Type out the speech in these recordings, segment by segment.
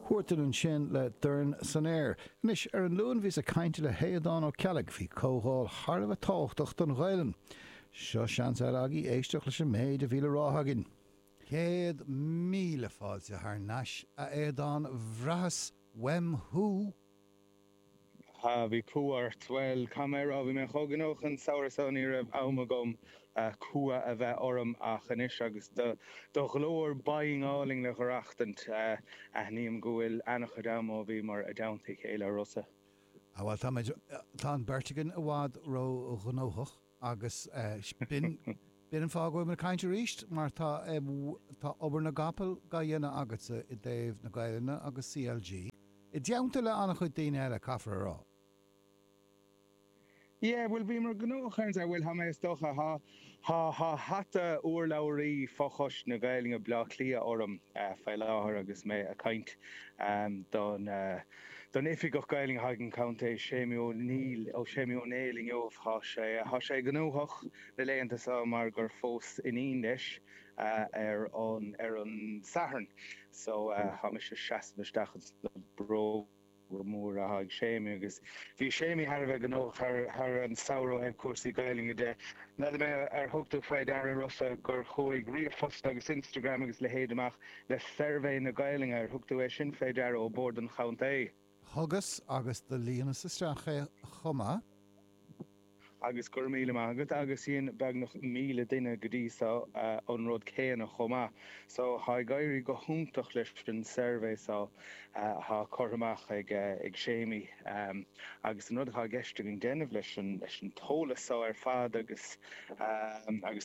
Huartan ansan le Dorn San Aer. Anois, ar an Luan bhíos ag caint le hAodán Ó Ceallaigh fé chomhdháil thar a bheith tábhachtach don Ghaelainn. Seo seans eile agaí éisteacht leis an méid a bhí le rá againn. Céad míle fáilte thar nais, a Aodáin, bhraitheas uaim thú! ha, bhí cumha ort. Bhuel, caithfidh mé a rá, bhí mé chomh gnóthach an samhradh so ní raibh am agam cumha a bheith orm ach anois agus do do ghlór binn álainn á aireachtaint, aithním go bhfuil ana-chuid am ó bhíomar i dteannta a chéile a Rossa. Ah bhuel, táimid, tá an beirt againn i bhfad ró-ghnóthach. Agus sin, b'in an fáth go bhfuil mé ag caint arís, mar tá obair na gcapall dá dhéanamh agatsa i dtaobh na Gaelainne agus CLG, i dteannta le an-chuid daoine eile, caithfear a rá. Yeah, bhuel, bhíomar gnóthach, bhuel, tá mé, is dócha, tá, tá, tá hata urlabhraí fho-choiste na Gaelainne Bhaile Átha Cliath orm faoi láthair agus mé ag caint don, don Oifigeach Gaeilge an Chontae, Séimí Ó Néill, ó Séimí Ó Néill inniu. Tá sé, tá sé gnóthach na laethanta seo mar gur phós iníon leis ar an, ar an Satharn. So, tá mise ag seasamh isteach ins na bróga móra atá ag Séimí agus bhí Séimí thar a bheith gnóthach thar, thar an samhradh ó thaobh cúrsaí Gaeilge de. N'fheadar mé ar thug tú fé ndeara Rossa gur chuaigh ríomhphost agus Instagram agus leithéid amach le suirbhé na Gaelainne. Ar thug tú é sin fé ndeara ó bhord an chontae? Thugas agus do líonas isteach é chomh maith. Agus go raibh míle maith agat. Agus dhein beagnach míle duine go dtí so an rud céanna chomh maith. So tá ag éirí go hiontach leis an suirbhé so atá curtha amach ag Séimí. Agus an rud atá i gceist againn déanamh leis an t-eolas so ar fad agus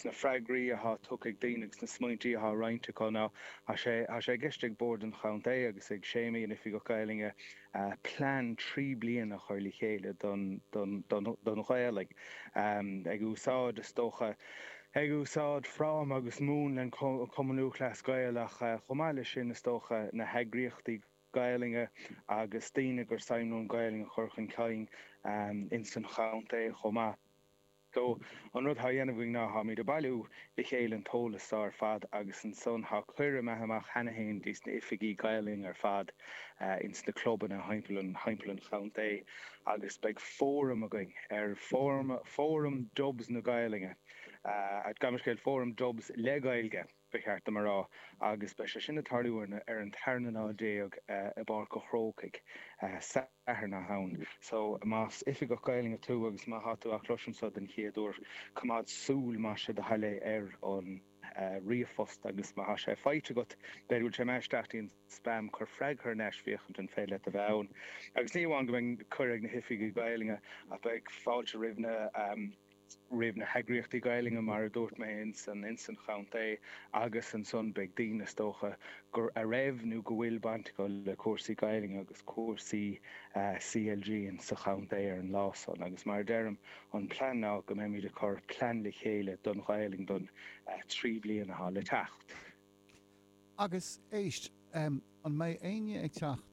na freagraí atá tugtha ag daoine agus na smaointí atá roinnte acu ná tá sé i gceist ag bord an chontae agus ag Séimí, an Oifigeach Gaelainne, plean trí bliana a chur le chéile don Ghaelainn ag úsáid, is dócha, ag úsáid fráma agus múnla an Chumann Lúthchleas Gael ach chomh maith leis sin, is dócha, na heagraíochtaí Gaelainne agus daoine gur suim leo an Ghaelainn a chur chun cinn ins an chontae chomh maith. So, an rud thá á dhéanamh againn ná tháimid ag bailiú le chéile an t-eolas so ar fad agus ansan thá cuireadh imithe amach cheana fhéin dtí's na hoifigigh Gaelainn ar fad ins na clubanna thimpeall an chontae agus beidh fóram againn ar, Fóram Dubs na Gaelainne, gabh mo leithscéal, Fóram Dubs le Gaeilge. ba cheart dom a rá, agus beidh sé sin ag tarlú ar an ar an tarna lá déag i bPáirc an Chrócaigh Satharn na Samhna. So, más oifigeach Gaelainne tú agus má tá tú á chloisint seo den chéad uair, coimeád súil amach más é do thoil é ar an ríomhphost agus má tá sé faighte agat, b'fhéidir go bhfuil sé imithe isteach dtí'n spam, cuir freagra thar n-ais féachaint an féidir leat a bheith ann. Agus ní amháin go mbeidh cuireadh ag na hoifigigh Gaelainne ach beidh fáilte roimh na. roimh na heagraíochtaí Gaelainne, mar a dúirt mé, ins an ins an chontae agus ansan beidh daoine, is dócha, a raibh nó go bhfuil baint acu le cúrsaí Gaelainne agus cúrsaí CLG in sa chontae ar an lá san agus mar a deirim, an plean ná go mbeimid ag cur plean le chéile don Ghaelainn don trí bliana atá le teacht. Agus, éist, an mbeidh éinne ag teacht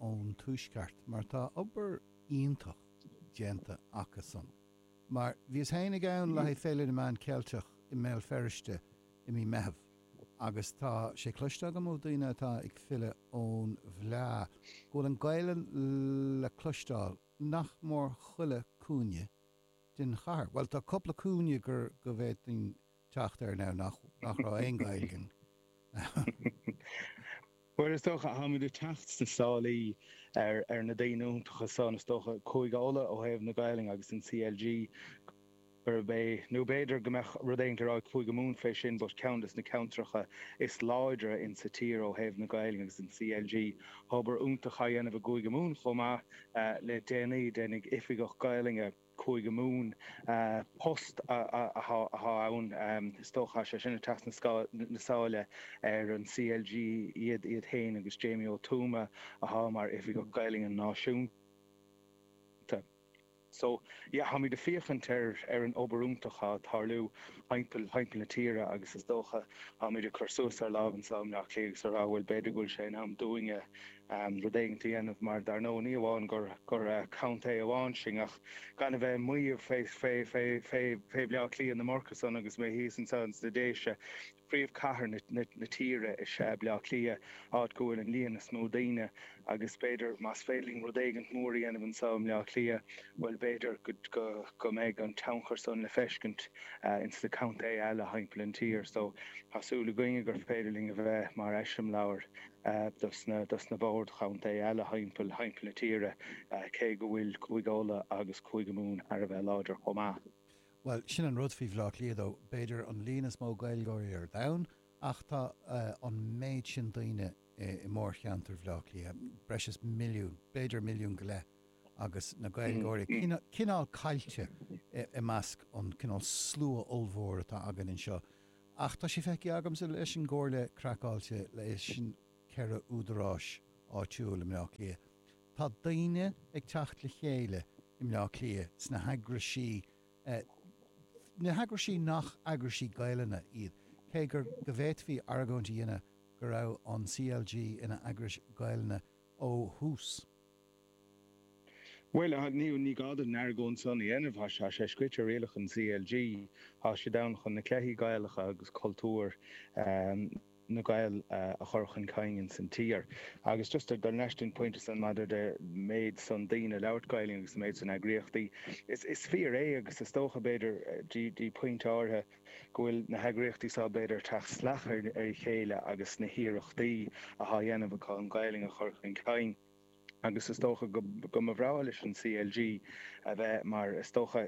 ón tuaisceart mar tá obair iontach. déanta acusan. Mar bhíos féin ann le haghaidh Féile na Meán Ceilteach i mBéal Feirste i mí Meitheamh agus tá sé cloiste agam ó daoine atá ag filleadh ón bhfleá go bhfuil an Ghaelainn le cloisteáil nach mór chuile cúinne den chathair. Bhuel tá cupla cúinne gur go bhféadfainn teacht air now nach nach raibh aon Ghaeilge in. Bhuel is dócha táimid ag teacht sna sálaí ar ar na daoine iontacha san is dócha Cúige Uladh ó thaobh na Gaolainne agus an CLG arb é nó b'fhéidir go mbeadh rud éigint le rá ag Cúige Mumhan fé sin but ceann des na ceantracha is láidre in sa tír ó thaobh na Gaolainne agus an CLG tá obair iontach á dhéanamh i gCúige Mumhan chomh maith le déanaí Déan Fay Oifigeach Gaolainne Cúige Mumhan. Post atá ann is dócha. Is é sin ag teacht sna sáile ar an CLG iad féin agus Jamie Ó Tuama atá mar Oifigeach Gaelainne Náisiúnta. So, yeah, táimid ag féachaint ar an obair iontach atá ag tarlú thimpeall na tíre agus is dócha táimid ag cur suas ár lámha anso i mBleá Cliath agus a rá bhuel, b'fhéidir go bhfuil sé in am dúinne, rud éigint a dhéanamh mar dar ndóigh ní amháin gur gur contae amháin sinn ach gan a bheith ag maíomh fé Bhleá Cliath ná mar sin agus mé thíos anseo ins na Déise. Príomhchathair na tíre is ea Baile Átha Cliath áit go bhfuil an líon is mó daoine agus b'fhéidir más féidir linn rud éigint mór a dhéanamh anseo i mBaile Átha Cliath bhuel b'fhéidir go go go mbeidh an tionchar san le feiscint ins na contae eile thimpeall an tír so tá súil againne gur féidir linn a bheith mar eiseamláir. dos na boird chontae eile thimpeall na tíre, cé go bhfuil Cúige Uladh agus Cúige Mumhan thar a bheith láidir chomh maith. Bhuel, sin an rud faoi Bhleá Cliath, tá b'fhéidir an líon is mó Gaeilgeoirí ar domhan ach tá an méid sin daoine i mórcheantar Bhleá Cliath, breis is milliún, b'fhéidir milliún go leith, agus na Gaeilgeoirí cineál caillte i measc an cineál slua ollmhór atá againn anseo. Ach tá sé feicthe agamsa leis an gComhairle Craiceáilte, leis an ceithre údaráis áitiúil i mBleá Cliath, tá daoine ag teacht le chéile i mBleá Cliath sna heagraisí, na heagraisí nach eagraisí Gaelainne iad, cé gur, go bhféadfaí argóint a dhéanamh go raibh an CLG ina eagras Ghaelainne ó thús. Bhuel, ní gá duit an argóint san a dhéanamh. Tá sé scrite i rialacha an CLG. Tá sé ann chun na cluichí Gaelacha agus cultúr na nGael a chur chun cinn ins an tír. Agus just dul leis den phointe san maidir le méid san daoine labhairt Gaelainn agus an méid san eagraíochtaí, is fíor é agus is dócha b'fhéidir dtí pointe áirithe go bhfuil na heagraíochtaí seo b'fhéidir teacht salach ar a chéile agus na hiarrachtaí athá dhéanamh acu an Gaelainn a chur chun cinn. agus is dócha go mba bhreá leis an CLG a bheith mar, is dócha,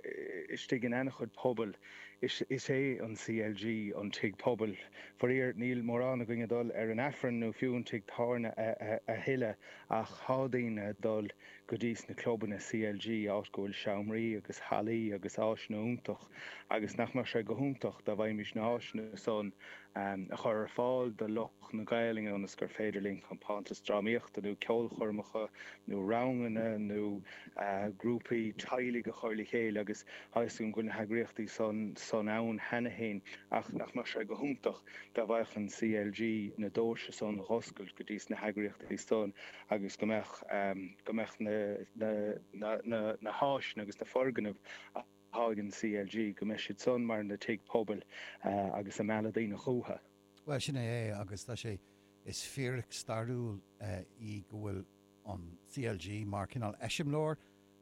istigh in an-chuid pobal, is é an CLG an tigh pobail. Faraor, níl mórán againn ag dul ar an Aifreann nó fiú an tigh tábhairne a thuilleadh ach tá daoine ag dul go dtí sna clubanna CLG áit go bhfuil seomraí agus hallaí agus áiseanna iontach. agus nach mbeadh sé go hiontach dá bhféadfaimis na háiseanna san a chur ar fáil do lucht na Gaelainne ionas gur féidir linn compántas drámaíochta nó ceolchoirmeacha nó ranganna nó grúpaí teaghlaigh a chur le chéile agus tá fhios agam go bhfuil na heagraíochtaí san ann cheana féin ach nach mbeadh sé go hiontach dá bhféadfadh an CLG na dóirse san a dh'oscailt go dtí sna heagraíochtaí san agus go mbeadh na háiseanna agus na foirgnimh atá ag an CLG go mbeidh siad san mar na tigh pobail agus ag mealladh daoine chucha. Bhuel, sin é agus tá sé, is fíric stairiúil í go bhfuil an CLG mar cineál eiseamláir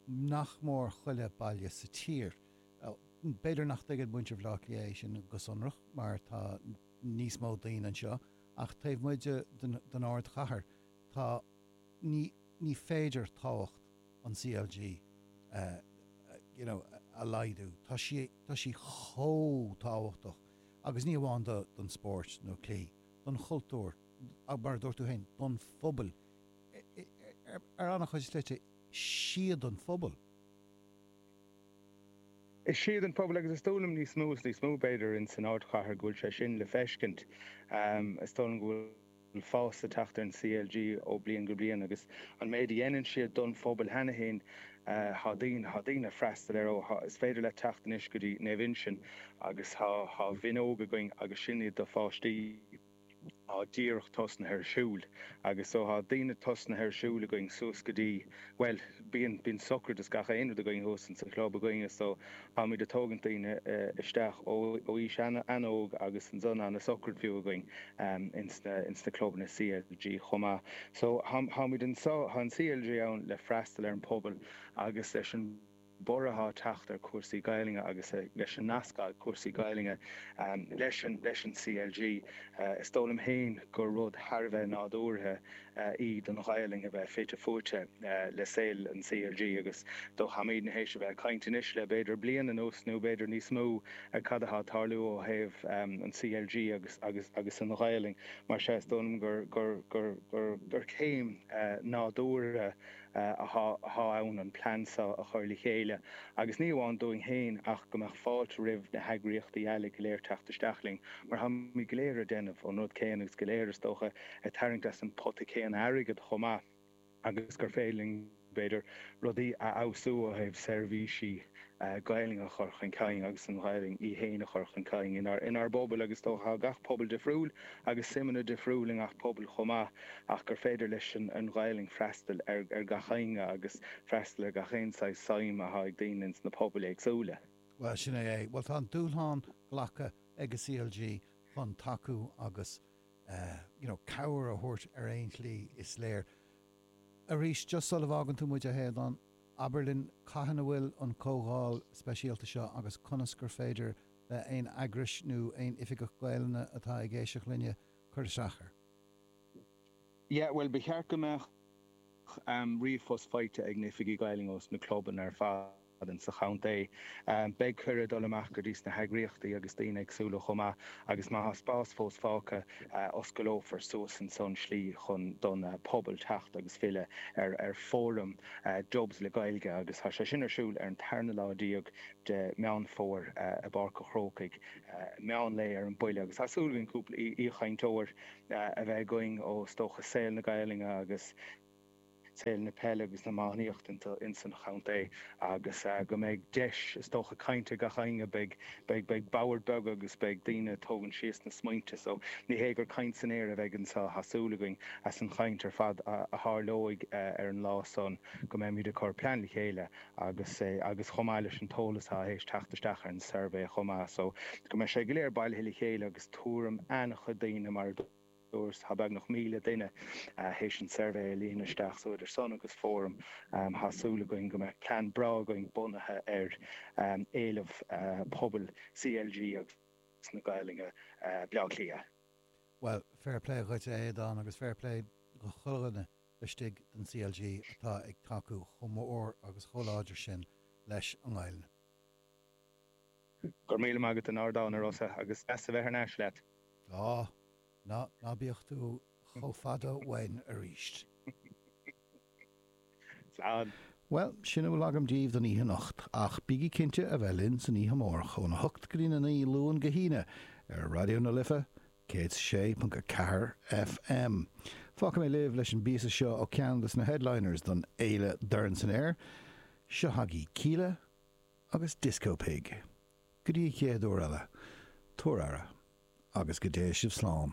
nach mór chuile baile sa tír. B'fhéidir nach dtuigeann muintir Bhleá Cliath é sin go sonrach mar tá níos mó daoine anseo ach taobh amuigh den ardchathair tá, ní féidir tábhacht. an CLG you know a laghdú. Tá sí tá sí chomh tábhachtach agus ní amháin do don spóirt nó cluichí, don chultúr ach mar a dúirt tú féin don phobail ar ana-chuid slite is iad an phobal. Is iad an pobal agus is dóigh liom níos mó is níos mó b'fhéidir ins an ardchathair go bhfuil sé sin le feiscint. Is dóigh liom go bhfuil. bhfuil fás ag teacht ar an CLG ó bliain go bliain agus an méid a dhéanann siad don phobal cheana féin. Tá daoine freastal ar is féidir leat teacht anois go dtí Naomh Uinseann agus tá mionóg againn agus sin do pháistí atá díreach tosnaithe ag siúl agus so tá daoine tosnaithe ag siúl againn suas go dtí bhuel bíonn bíonn sochraid is gach aon rud againn thuas in sa chlub againn is so Táimid ag tógaint daoine isteach ó aois an-óg agus ansan tá na socair fiú againn ins na clubanna CLG chomh maith. So táimid anseo, tá an CLG ann le freastal ar an pobal agus leis an borradh atá ag teacht ar cúrsaí Gaelainne agus leis an nasc atá ag cúrsaí Gaelainne leis an CLG is dóigh liom féin gur rud thar a bheith nádúrtha í don Ghaelainn a bheith fite fuaite le saol an CLG agus go bhfuilimid tar éis a bheith ag caint anois le b'fhéidir bliain anuas nó b'fhéidir níos mó ar cad atá ag tarlú ó thaobh an CLG agus agus an Ghaelainn mar sin is dóigh liom gur gur gur gur céim nádúrtha atá ann an plean seo a chur le chéile agus ní amháin dúinn féin ach go mbeadh fáilte roimh na heagraíochtaí eile go léir teacht isteach linn mar táimid go léir ag déanamh an rud céanna agus go léir is dócha ag tarraingt as an pota céanna airgead chomh maith agus gur féidir linn b'fhéidir rudaí a fheabhsú ó thaobh seirbhísí an Ghaelainn a chur chun cinn agus an Ghaelainn í fhéin a chur chun cinn inár bpobail agus is dócha tá gach pobal difriúil agus suimeanna difriúil i ngach pobal chomh maith ach gur féidir leis an Ghaelainn freastal ar gach éinne agus freastal ar gach aon saghas suim atá ag daoine ins na pobail éagsúla. Bhuel, sin é é. Bhuel, tá an dúshlán glactha ag an CLG chun tacú agus you know cabhair a thabhairt ar aon slí is léir. Arís, just sula bhfágann tú muid, a Aodáin, Abair linn cathain a bhfuil an comhdháil speisialta seo agus conas gur féidir le haon eagrais nó aon Oifigeach Gaelainne atá ag éisteacht linne cur isteach air? Yeah, bhuel, ba cheart go mbeadh ríomhphost faighte ag na Oifigigh Gaelainne ós na clubanna ar fad in sa chontae. Beidh cuireadh ag dul amach go dtí sna heagraíochtaí agus daoine éagsúla chomh maith agus má thá spás fós fágtha, Osclófar suas ansan slí chun don pobal teacht agus freastal ar fóram Dubs le Gaeilge agus tá sé sin ar siúl ar an tarna lá déag de Meán Fómhair i bPáirc a' Chrócaigh. Meán lae ar an bhuille agus tá súil againn cúpla aoichainteoir a bheith againn ó is dócha saol na Gaelainne agus. saol na peile agus na hiománaíochta ins an chontae agus go mbeidh deis is dócha cainte ag gach éinne. Beidh beidh boird bheaga agus beidh daoine ag tógaint síos na smaointe so ní hé gur caint san aer a bheidh anseo tá súil againn as an chaint ar fad a tharlóidh ar an lá san go mbeimid ag cur plean le chéile agus agus chomh maith leis an t-eolas atá tar éis teacht isteach ar an suirbhé chomh maith so go mbeidh sé go léir bailithe le chéile agus tuairim an-chuid daoine mar a Tá beagnach 1,000 duine théis an suirbhé a líonadh isteach so idir sin agus fóram, Tá súil againn go mbeidh plean breá againn bunaithe ar éileamh pobail CLG agus na Gaeilge Bleá Cliath. Bhuel, fair play dhuit a Aodáin agus fair play do chuile dhuine laistigh den CLG atá ag tacú chomh mór agus chomh láidir sin leis an nGaeilge. Go raibh míle maith agat as an ardán, a Rossa, agus deas a bheith thar n-ais leat. Tá. Ná bíodh sé chomh fada uainn arís. Slán. Bhuel, sin a bhfuil agam díbh don oíche anocht, ach bígí cinnte a bheith linn san oíche amárach óna hocht go dtína naoi, Luan go hAoine, ar Raidió na Life 106.4 FM. Fágfaidh mé libh leis an bpíosa seo ó cheann de na headliners don fhéile Dorn San Aer, seo chugaibh Kíla, agus Disco Pig. Go dtí an chéad uair eile, tugaigí aire, agus go dté sibh slán.